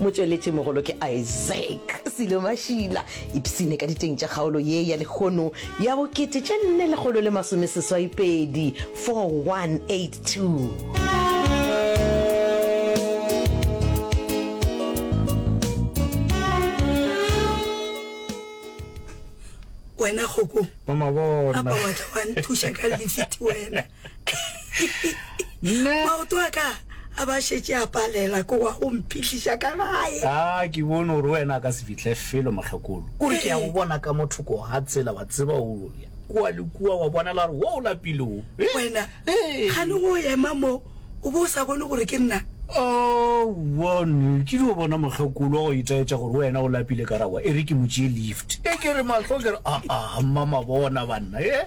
Motšweletšimogolo ke Isaac Silo Mashila, ipshine ka diteng tša kgaolo ye ya lekgono ya bo kete tše nne lekgolo le masome seswai pedi, 4182. Wena kgokong, apa wa tla wa nthuša ka lifiti wena? Nna- maoto a ka a ba šetše a palela ko wa go mphihliša ka gae a Ah, ke bone gore wena a ka se fihle felo mokgekolo kore ke ya go bona ka mo thoko ga tsela wa tseba o ya kua le kua wa bonala gore wo o lapile o Eh, wena eh. gane go ema mo o bo o sa bone gore ke nna one ke dio bona mokgekolo wa go itaetša gore wena o lapile ka rawa e re ke mo tšee lift e ke re matlho ke re aa mmama bona banna e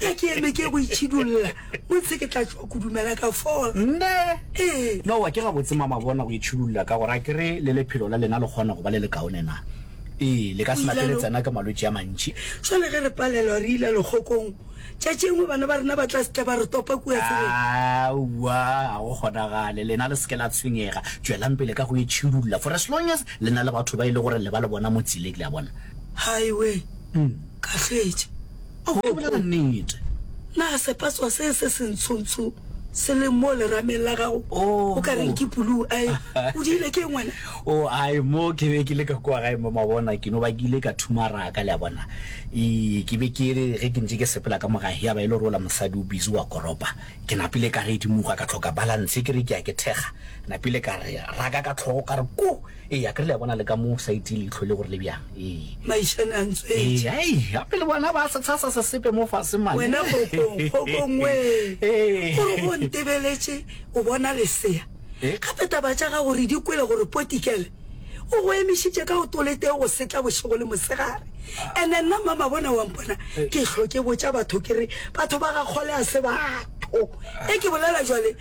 Ka ke eme ke go itšhidulla, o ntshe ke tla tšwa kudumela ka fola. Nne? Ee. Nowa, ke gabotse mama bona go itšhidulla ka gore a ke re le lephelo la lena le kgona go ba le lekaone na? Ee, le ka se nate le tsena ke malwetši a mantši. Šole ge re palelwa re ile lekgokong, tšatši engwe bana ba rena ba tla se tle ba re topa kua tseleng. Aowa, ga go kgonagale. Lena le se ke la tshwenyega. Tšwelang pele ka go itšhidulla for as long as le na le batho ba e le gore le ba le bona mo tsele, le a bona. Haiwe, ka hwetša. A o bolela nnete. Na sepatswa se se sentshontsho se leng mo lerameng la gago o ka reng ke puluu? A e o diile ke eng wena? O a e mo ke be ke le ka kwa gae mo mabona ke no ba ke ile ka thumaraka, le a bona. E ke be ke re ge ke ntše ke sepela ka mo gae ya ba e le gore ola mosadi o busy wa koropa. Ke napile ka re edimoga ka tlhoka balance ke re ke ya ke thekga. Napile ka re raka ka tlhogo ka re ko! Ee, akere le a bona le ka mo sa itiye leihlo le gore le bjang. Ee. Maišane a ntswetše. Ee, ai, gape le bona ba se tshasa sesepe mo fase mane. Wena kgokong, kgokong wee, Ee. gore go ntebeletše o bona lesea. Ee. Gape taba tša gago re di kwele gore Potikele o go emišitše ka go toletee go setla bošego le mosegare. And-e nna Mmamabona wa mpona ke hlo ke botša batho ke re, Batho ba ga Kgole a se batho. Ee, ke bolela bjale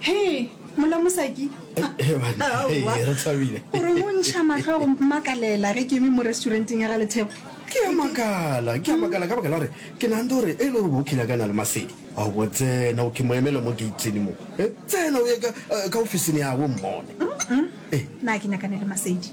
Hee, mola mosaki. He banna, hee, re thabile. O re o ntšha mahlo go mmakalela ge ke eme mo restauranteng ya ga Lethebo. Ke a makala, ke a makala ka baka la gore ke nagante gore e le gore bo kile ka na le masedi. A bo tsena, o ke mo emele mo gate-ing mo. He, tsena o ye ka, ka ofising ya gabo mmone. Na ke nyakane le masedi?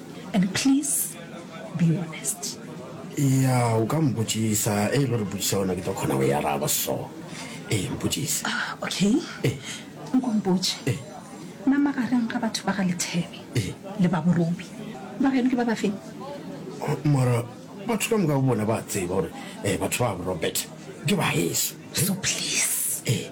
And please be honest. Eya, o ka mpotšiša. Ee, lo re botšiša gona ke tlo kgona go e araba. So, ee, mpotšiša. Ah, okay. Ee. Nko mpotše. Ee. Na magareng ga batho ba ga Lethebe Ee. le ba Borobi, ba gaeno ke ba ba feng? Mara batho ka moka bo bona ba a tseba gore eh, batho ba bo Robert ke ba heso. So please, ee,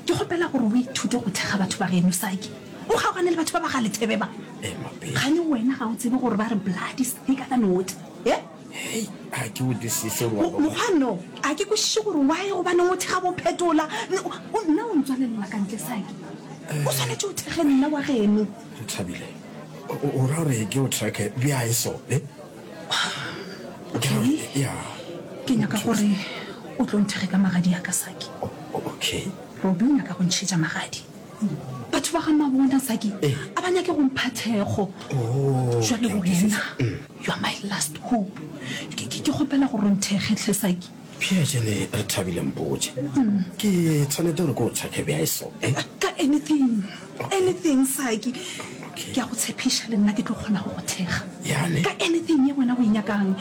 ke kgopela gore o ithute go thekga batho ba geno, Saki. O kgaogane le batho ba ba ga Lethebe ba. Ee, Mapedi. Gane wena ga o tsebe gore ba re blood is thicker than water, ee? Hei, ga ke utlwisise Mo- ngwana. Mokgwanno, a ke kwešiše gore why gobaneng o thekga bophetola. N- o- o- Nna o ntswalelela ka ntle, Saki. O swanetše o thekge nna wa geno. Thabile, o- o o ra gore ke o tracker bjang so, ee? ke nyaka gore o tlo nthege ka magadi ya ka saki okay robi o nyaka go ntšhetša magadi batho ba ga mabona saki eh. a ba nyake go mpha thekgo jale wena you are my last hope ke kgopela gore nthege tlhe saki Pierre, Jane, re thabile mpotše. Ke tshwanete gore ke o tshwake bja eso. Ka anything, anything Saki. Ke a go tshepiša le nna ke tlo kgona go go thekga. Jane. Ka anything ye wena o e nyakang.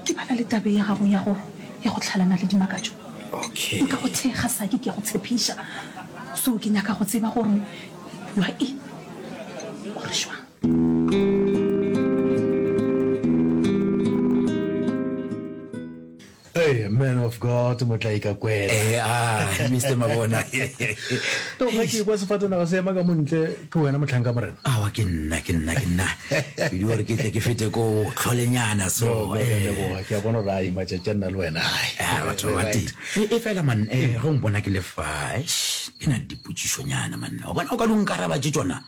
Ke bala le tabe ya gago ya go ya go tlhalana le dimakatšo. Okay. Nka go thekga Saki ke a go tshepiša. So ke nyaka go tseba gore you are in or šwang. Hey, man of God, motlaika kwena. Eh, ah, Mr. Mabona. To ga ke kwa sefatanaga se ema ka montle ke wena motlhanka morena. Awa ke nna, ke nna, ke nna. Ke di gore ke tle ke fete ko tlholenyana so. No, eh, boa, ke a bona gore ai matšatši a nna le wena. Ah, batho ba teng. E e fela man, eh, go mpona ke le fa. Eish, ke na le dipotšišonyana man. Wa bona o ka di nkaraba tše tšona.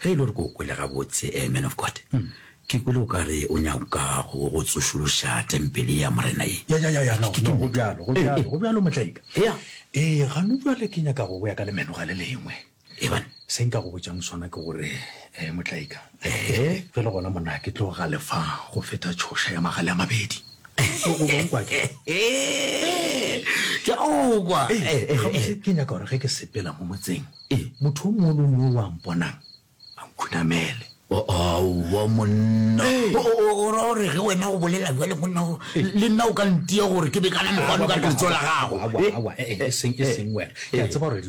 Ge e le gore ke o kwele gabotse, eh, man of God, ke kwele o ka re o nyaka go go tsošološa tempele ya Morena ye. Ya, ya, ya, ya, no, Ke- ke- no, go bjalo, go Eh, bjalo, eh. go bjalo, motlaika. Ya. Ee, gano jwale ke nyaka go boya ka lemenoga le lengwe. Eban. Se nka go botšang sona ke gore, eh, motlaika, Ehe. ge le gona monna ke tlo galefa go feta tšhoša ya magale a mabedi. O- o bong kwa ke? Eh, ke a o kwa. Ee, Eh, eh, eh. gabotse ke nyaka gore ge ke sepela mo motseng Ee, motho o mongwe le o mongwe yo o a mponang, a nkhunamele. Aowa, monna. Ee. O, o, o ra gore ge wena o bolela bjale, monna, o, Ee. le nna o ka ntia gore ke be ka na mogwalo ka letso la gago. Aowa, Eh, aowa, eh, eh, eseng, eseng wena. Ke a tseba gore dilo.